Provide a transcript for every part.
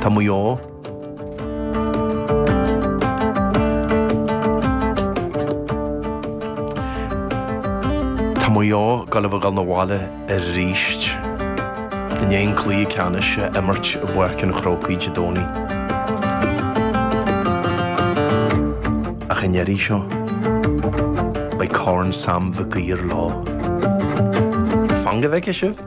Tá Maigh Eo. Tá Maigh Eo, ag dul a bheith ag dul 'na bhaile arís. I ndiaidh an cluiche ceannais a imirt i bPáirc an Chrócaigh Dé Domhnaigh? Ach an iarraidh seo, beidh Corn Sam Mhig Uidhir leo. Fan go bhfeicfidh sibh!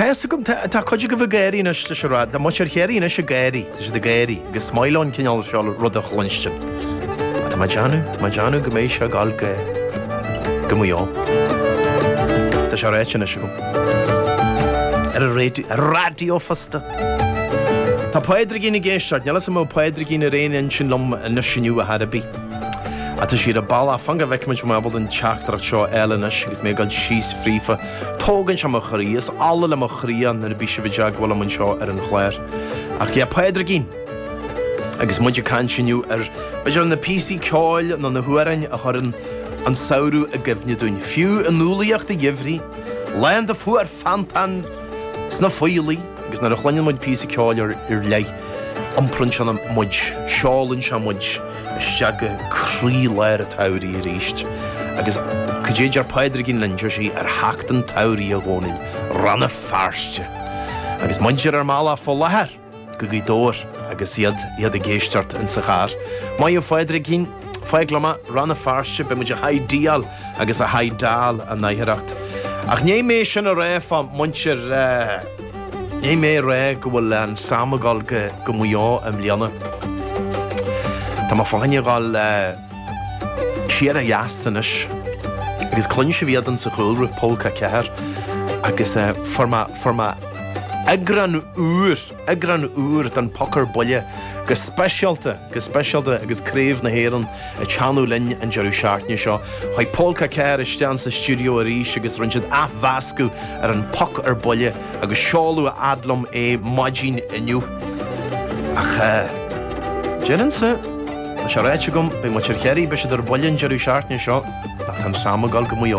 Tá a fhios agam, tá, tá cuid agaibh ag gáirí anois leis an rad, tá muintir Chiarraí anois ag éirí, tá siad ag éirí, agus ní maith leo an cineál seo ruda a chluinstin. Tá mé ag déanamh, tá mé ag déanamh go mbeidh sé ag dul go Maigh Eo. Tá sé ráite anois agam. Ar an raidió, ar an raidió fosta. Tá Pádraigín ag éisteacht, níl fhios agam an bhfuil Pádraigín ar aon intinn liom anois inniu ar chor ar bith. Atá siad ag bhuel fan go bhfeicfimid an mbeimid don teachtaireacht seo eile anois agus mé ag dul síos fríofa. Tógann sé mo chroí, is ola le mo chroí é nuair a bíos sibh i dteagmháil liom anseo ar an chláir. Ach yeah, Pádraigín! Agus muid ag caint inniu ar, b'fhéidir ar na píosaí ceoil nó na hamhráin a chuireann an samhradh i gcuimhne dúinn, fiú i ndúlaíocht an gheimhridh, lá iontach fuar feannta insna Faoillí. Agus nuair a chluineann muid píosa ceoil ar leith, iompraíonn sé muid, seolann sé muid isteach go croílár an tsamhraidh arís. Agus cad é a deir Pádraigín linn, deir sí, 'Ar theacht an tsamhraidh, a Dhónaill, Ranna Feirste! Agus muid ar ár mbealach fá láthair go Gaoth Dobhair agus iad, iad ag éisteacht insa charr. Maith thú a Phádraigín, fág liom é, Rann na Feirste, beidh muid a high-deáil! agus a haghaidh dall a n-oidhreacht. Ach níl mé sin a rá fá muintir Níl mé a rá go bhfuil an Sam ag dul go Maigh Eo i mbliana. Tá mé féin ag dul siar ó dheas anois agus cluin sibh iad insa chúlra Pólca 4 agus fuair mé eagrán úr eagrán úr den Poc ar Buile go speisialta, go speisialta agus Craobh na hÉireann ag teannadh linn an deireadh seachtaine seo. Chuaigh Pólca 4 isteach sa stiúideo arís agus rinne siad athmheascadh ar an Poc ar Buile agus seoladh a fhad liom é maidin inniu. Ach deirimse, tá sé ráite agam, beidh muintir Chiarraí, beidh siad ar buile an deireadh seachtaine seo, ach tá an Sam ag dul go Maigh Eo.